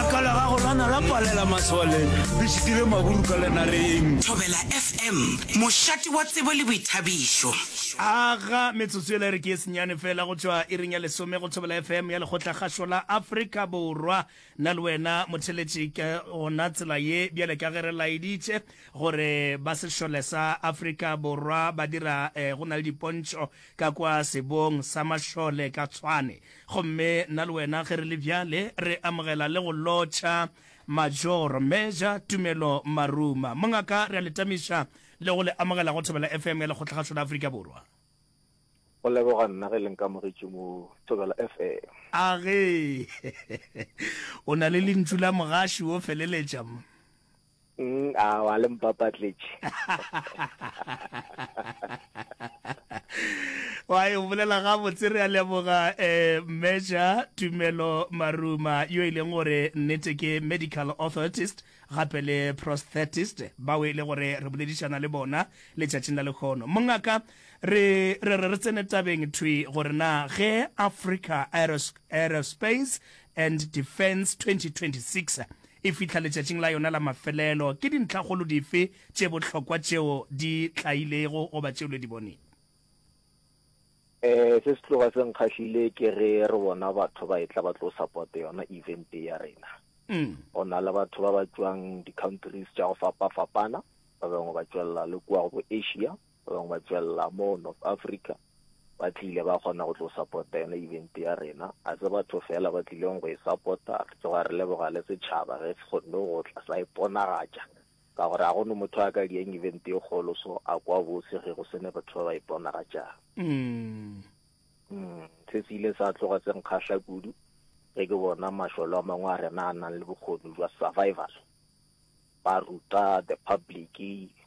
Ka la gago lana la palela maswaleng le šitile maburu ka lenareng. Thobela FM, mošate wa tsebo le boithabišo. Aga metsotso yela e re ke e senyane fela go tšwa iring ya lesome go Thobela FM ya lekgotlakgašo la Afrika Borwa. Nna le wena motheletši ka gona tsela ye bjale ka ge re laeditše gore ba sešole sa Afrika Borwa ba dira go na le dipontšho ka kwa sebong sa mašole ka Tshwane. Gomme nna le wena ge re le bjale re amogela le go lotšha Major, Meja, Tumelo Maruma. Mongaka, re a le tamiša le go le amogela go Thobela FM ya Lekgotlakgašo la Afrika Borwa. Go leboga nna ge le nkamogetše mo Thobela FM. A ge o na le lentšu la mogaši wo feleletša? Mm, a wa le mpapatletše. wa e bolela ga botse re a leboga eh meja tumelo maruma yo e leng gore nnete ke medical authorist gape le prosthetist bao e le gore re boledišana le bona letšatšing la lekgono mongaka re re re re tsene tabeng thwi gore na ge africa Aeros- aerospace and Defence 2026 e fihla letšatšing la yona la mafelelo, ke dintlhakgolo dife tše bohlokwa tšeo di tlailego goba tšeo le di bonego? Eh, se se tloga se nkgahlile ke ge re bona batho ba etla ba tlo support yona event ya rena. Mm. Go na le batho ba ba tšwang di-countries tša go fapa-fapana, ba bangwe ba tšwelela le kua go bo Asia, ba bangwe ba tswelela mo north africa ba tlile ba kgona go tlo supporta yona event ya rena a se batho fela ba tlileng go e supporta re tloga re leboga le setšhaba ge se kgonne go tla sa iponagatša ka gore ga gone motho a ka dieng event e kgolo so a kwa bose ge go sene batho ba ba iponagatšang mm. mm, se se ile sa tloga se nkgatlha kudu ge ke bona mašolo a mangwe a rena a nang le bokgoni jwa survival ba ruta the public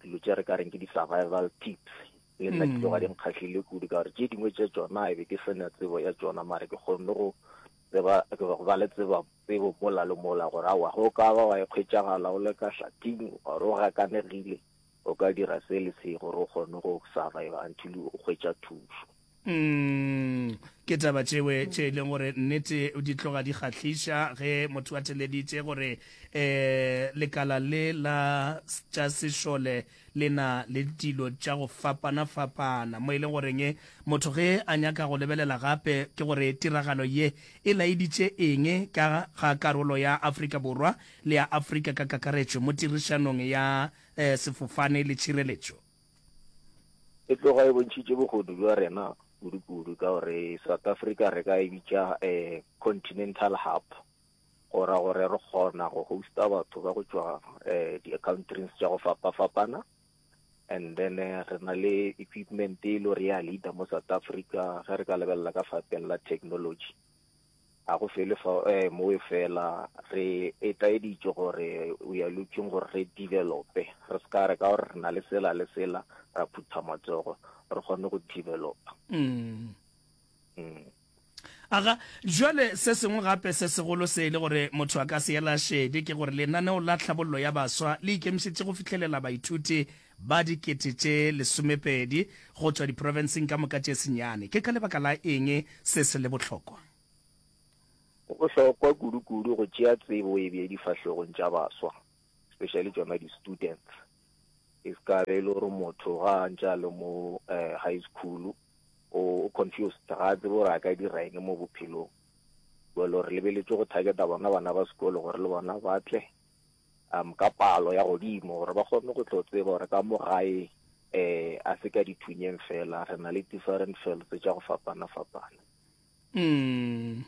dilo tše re ka reng ke di-survival tips le nna ke tloga di nkgahlile kudu ka gore tše dingwe tša tsona e be ke sena tsebo ya tsona mare ke kgonne go tseba go ba le tseba tsebo mola le mola gore awa go ka ba wa ikgwetšagala o le ka hlating or o gakanegile O ka dira se le se gore o kgone go survive until o hwetša thušo. Umm ke taba tšewe tše e leng gore nnete di tloga di kgahliša ge motho a theleditše gore um lekala le la tša sešole le na le dilo tša go fapana-fapana mo e leng goreng motho ge a nyaka go lebelela gape ke gore tiragalo ye e laeditše eng ka ga karolo ya Afrika Borwa le ya Afrika ka kakaretšo mo tirišanong ya eh, sefofane le tšhireletšo. E tloga e bontšhitše bogodu bja rena kudu-kudu ka gore South Africa re ka e bitša eh, continental hub go ra gore re kgona go hosta batho ba go tšwa eh, di-accountrings tša go fapa-fapana and then eh, re na le equipment e le gore ya leader mo south africa ge re ka lebelela ka fapeng la technology Ga go fele fa, eh, mowe fela. Re etlaeditšwe gore we are looking gore re develope, re se ka re ka gore re na le sela le sela ra phutha matsogo re kgone go developa. Mm. Mm. aga jwale se sengwe gape se segolo se e le gore motho a ka se ela šede ke gore lenaneo la tlhabollo ya baswa le ikemišetše go fihlelela baithuti ba dikete tše lesomepedi go tšwa diprofenseng ka moka tše senyane. Ke ka lebaka la eng se se le bohlokwa? Go bohlokwa kudukudu go tšea tsebo e bje difahlogong tša baswa, especially tšona di-students. E se ka be e le gore motho ga a ntše a le mo high school o confused, ga a tsebe gore a ka dira eng mo bophelong. Jwale re lebeletše go targeta bona bana ba sekolo gore le bona ba tle um ka palo ya godimo gore ba kgone go tlo tseba gore ka mo gae um a se ka dithunyeng fela re na le different felts tša go fapana-fapana mm.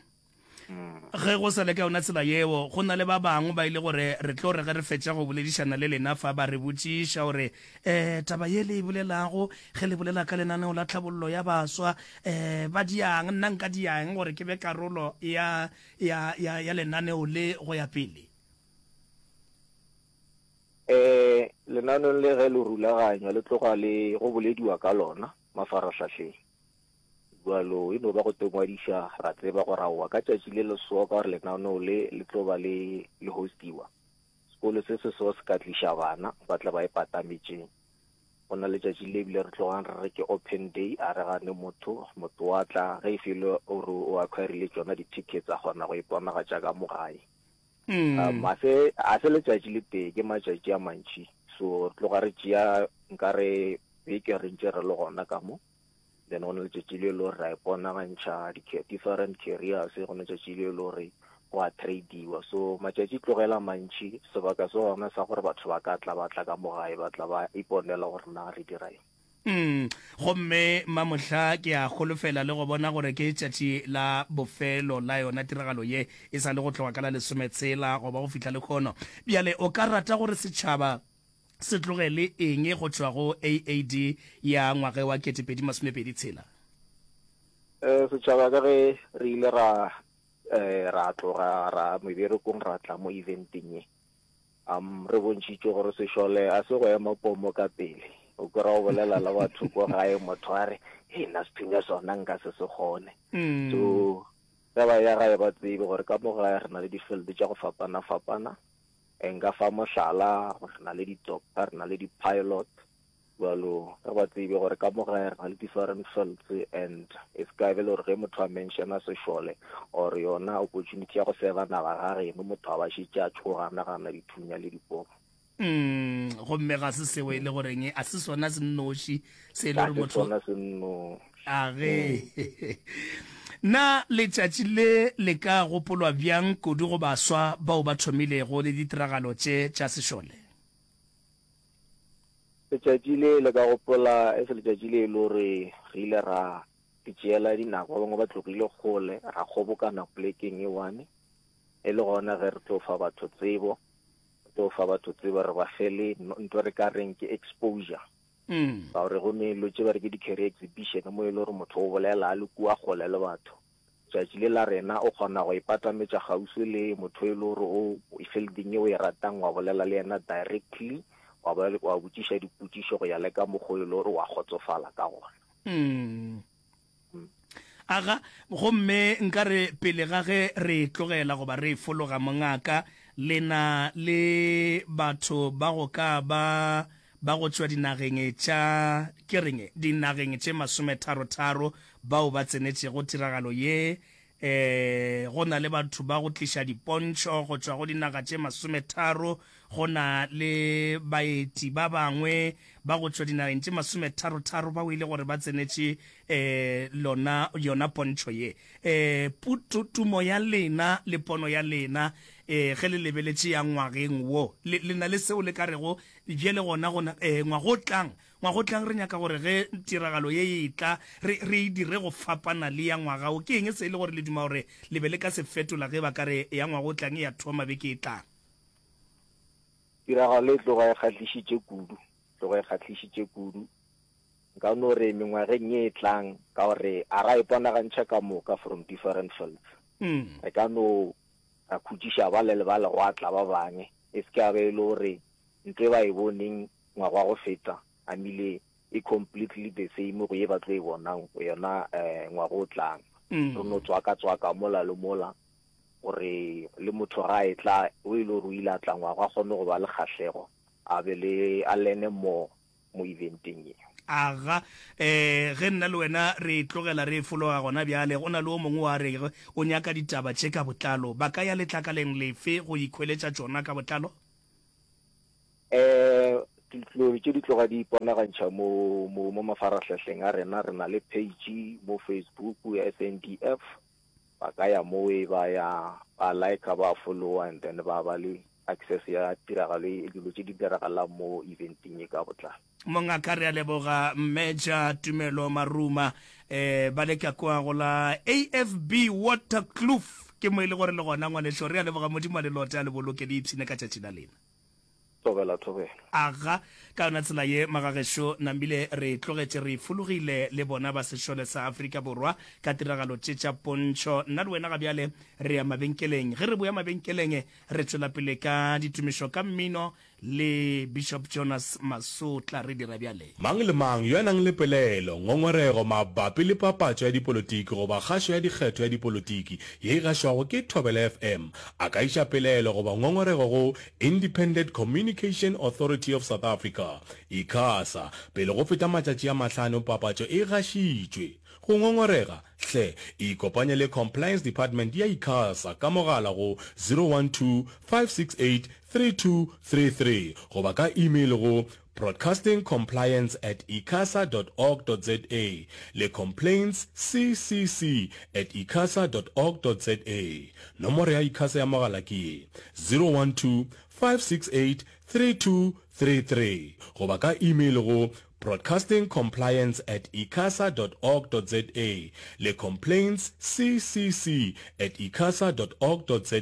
mm. ge go sa le ka yona tsela yeo go na le ba bangwe ba ile gore re tlo re ge re fetša go boledišana le lena fa ba re botšiša gore um taba ye le e bolelago ge le bolela ka lenaneo la tlhabollo ya baswa um ba diang nna nka diang gore ke be karolo ya, ya, ya, ya lenaneo le go ya pele Eh, lenanong le ge le rulaganywa le tloga le go bolediwa ka lona mafarahlahleng jalo e no ba go tengwadiša ra tseba go raowa ka tšatši le lesoa ka gore lenaneo le le tlo ba le le hostiwa sekolo se se so se ka tliša bana ba tla ba e patametšeng go na le tšatši le ebile re tlogang re re ke open day a re gane motho motho wa tla ge e felo o re o acquirile tsona di-tickets a kgona go iponagatša ka mo gae Mm. Um, a se a se letšatši le tee ke matšatši a mantši so re tloga re tšea nka re beke re ntše re le gona ka mo then go na letšatši le le gore ra iponagantšha different carriers go na letšatši le le gore go a tradiwa so matšatši tlogela mantši sebaka se gona sa gore batho ba ka tla ba tla ka mo gae ba tla ba iponela gore na re dira eng Mm, gomme mamohla ke a holofela le go bona gore ke tšatši la bofelo la yona tiragalo ye e sa le go tloga ka la lesometshela goba go fihla le kgono. Bjale o ka rata gore setšhaba se tloge le eng go tšwa go AAD ya ngwage wa 2026? Eh, setšhaba ka ge re ile ra eh, ra tloga ra meberekong ra tla mo eventeng ye Am, re bontšhitšwe gore sešole a se go ema pomo ka pele. O kwera o bolela le batho ko gae motho a re, Hei, na sethunya sona nka se se kgone. So, ge ba ya gae ba tsebe gore ka mo gae re na le di-field tša go fapana-fapana. Nka fa mohlala, re na le di-doctor, re na le di-pilot, bjalo re ba tsebe gore ka mo gae re na le different fields and e se ka be le gore ge motho a menšena sešole or yona opportunity ya go seba naga ga reno motho a ba šetše a tšhoga a nagana dithunya le dipoko mm gomme ga se seo e le goreng a se sona se nnoši se e le gore motho sona se nno age mm. na letšatši le le ka gopolwa bjang kudu go baswa bao ba thomilego le ditiragalo tše tša sešole Letšatši le le ka gopola e se letšatši le e le gore re ile ra di tšeela dinako ba bangwe ba tlogile kgole ra kgobokana polekeng e one e le gona ge re tlo fa batho tsebo re tlo fa batho tsebo re ba fele nto re ka reng ke exposure mm. ka gore go ne lo tse ba re ke di-carry exhibition mo e le gore motho o bolela a le kua kgole le batho Tšatši le la rena o kgona go ipatametša kgauswi le motho e le gore o fielding ye o e ratang wa bolela le yena directly wa ba wa botšiša dipotšišo go ya le ka mokgo e le gore wa kgotsofala ka gona. Aga, gomme nkare pele ga ge re e tlogela goba re e fologa, mongaka, le na le batho ba go ka ba ba go tšwa dinageng tša, ke reng, dinageng tše masometharo-tharo bao ba tsenetšego tiragalo ye. Ee, go na le batho ba go tliša dipontšho go tšwa go dinaga tše masometharo. Go na le baeti ba bangwe ba go tšwa dinageng tše masometharo-tharo bao e le gore ba tsenetše ee, lona, yona pontšho ye. Ee, putu, tumo ya lena le pono ya lena, ee, ge le lebeletše ya ngwageng wo, le, le na le seo le ka rego, Bjale gona, gona, ee, ngwaga o tlang, Ngwagotlang re nyaka gore ge tiragalo ye e tla, re, re e dire go fapana le ya ngwaga wo. Ke eng se e le gore le duma gore le be le ka se fetola ge ba ka re ya Ngwagotlang e a thoma beke e tlang? Tiragalo e tloga e kgahlišitše kudu, e tloga e kgahlišitše kudu. Nka no re mengwageng ye e tlang, ka gore a ra iponagantšha ka moka from different fields, re ka no ra khutšiša bale le bale gwa tla ba bangwe, e se ke ya ba e le gore nto e ba e boneng ngwaga wa go feta a mile e completely the same go ye ba tlo e bonang yona um ngwaga o tlang mm. re no tswaka tswaka mola le mola gore le motho ga e tla o e le gore o ile a tla ngwaga a kgone go ba le kgatlhego a be le a lene mo mo eventeng e aga um ge nna le wena re tlogela re fologa gona bjale go na le o mongwe wa re o nyaka ditaba tše ka botlalo ba ka ya letlakaleng lefe go ikhweletša tšona ka botlalo um dilo tše di tloga di iponagantšha mo mo mo mafarahlahling a rena re na le page mo facebook ya sndf ba ka ya mo e ba ya ba like ba followa and then ba ba le access ya tiragalo e dilo tše di diragalang mo eventeng e ka botlalo mongaka re a leboga mmeja tumelo maruma um ba le ka kwa go la afb watercloof ke mo e le gore le gona ngwanešo re a leboga modimo a le lote a le boloke le ipshine ka tšatši la lena Thobela, thobela. Aga, ka yona tsela ye, Magagešo Nambile, re tlogetše re fologile le bona ba sešole sa Afrika Borwa ka tiragalo tše tša pontšho. Nna le wena ga bjale re ya mabenkeleng. Ge re boya mabenkeleng, re tšwela pele ka ditumišo ka mmino le Bishop Jonas Masotla. Re dira bjal. Mang le mang yo a nang le pelaelo, ngongorego mabapi le papatšo ya dipolotiki goba kgašo ya dikgetho ya dipolotiki ye e gašwago ke Thobela FM a ka iša pelaelo goba ngongorego go Independent Communication Authority of South Africa, Icasa, pele go feta matšatši a mahlano papatšo e gašitšwe. Go ngongorega, hle ikopanye le Compliance Department ya Icasa ka mogala go 012 568 3233 goba ka email go Broadcasting Compliance at icasa dot org dot za le Complaints CCC at icasa dot org dot za. Nomoro ya Icasa ya mogala ke ye, 012-568-3233 goba ka email go Broadcasting Compliance at icasa dot org dot za le Complaints CCC at icasa dot org dot za.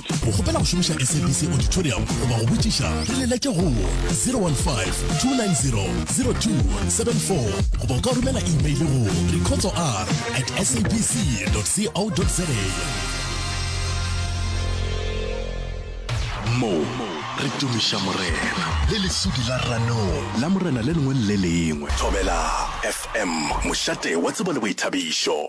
Go kgopela go šomiša SABC Auditorium goba go botšiša, re leletše go 015-290-0274 goba o ka romela imeile go recordsor at sabc.co.za. Mo re tumiša Morena le lesudi la ranong la Morena le lengwe le le lengwe. Thobela FM, mošate wa tsebo le boithabišo.